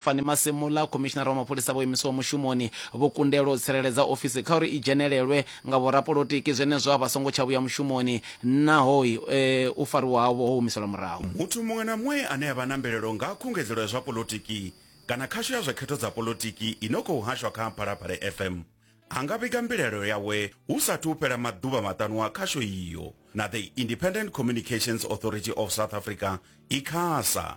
Fani Masemola, Khomishinara wa Mapholisa vho imiswaho mushumoni vho kundelwa u tsireledza ofisi kha uri i dzhenelelwe nga vhorapolotiki zwenezwo a vha songo tsha vhuya mushumoni naho u fariwa havho ho humiselwa murahu. Muthu muṅwe na muṅwe ane a vha na mbilaelo nga ha khungedzelo ya zwa polotiki kana khasho ya zwa khetho dza polotiki i no khou hashwa kha Mphalapale FM a nga vhiga mbilaelo yawe hu sa athu u fhela maḓuvha maṱanu a khasho iyo na The Independent Communications Authority of South Africa, Icasa.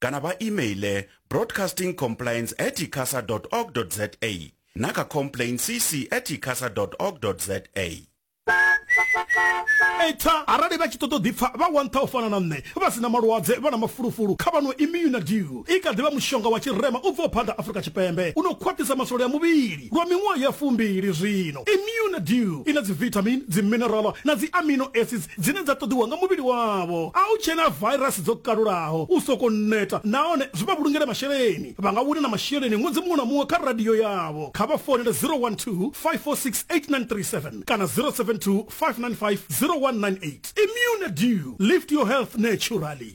kana vha emaile broadcasting complaints at icasa org za na kha complain cc at icasa org za eta arali vha tshi ṱoḓa ḓipfa vha wantha u fana na nṋe vha sina malwadze vha na mafulufulu kha vhano imuna dew i kha ḓivha mushonga wa tshirema u bvaho phanḓa afurika tshipembe u no khwaṱhisa masole a muvhili lwa miṅwaha ya fumbili zwino imuna dew i na dzivitamin dziminerala na dzi amino acids dzine dza ṱoḓiwa nga muvhili wavho. A u tshena vairasi dzo kalulaho, u sokou neta nahone zwi vha vhulungele masheleni. Vha nga wina na masheleni ṅwedzi muṅwe na muṅwe kha radio yavho. Kha vha founele 012-546-8937 kana 072-595-0198. Immune Dew, Lift Your Health Naturally.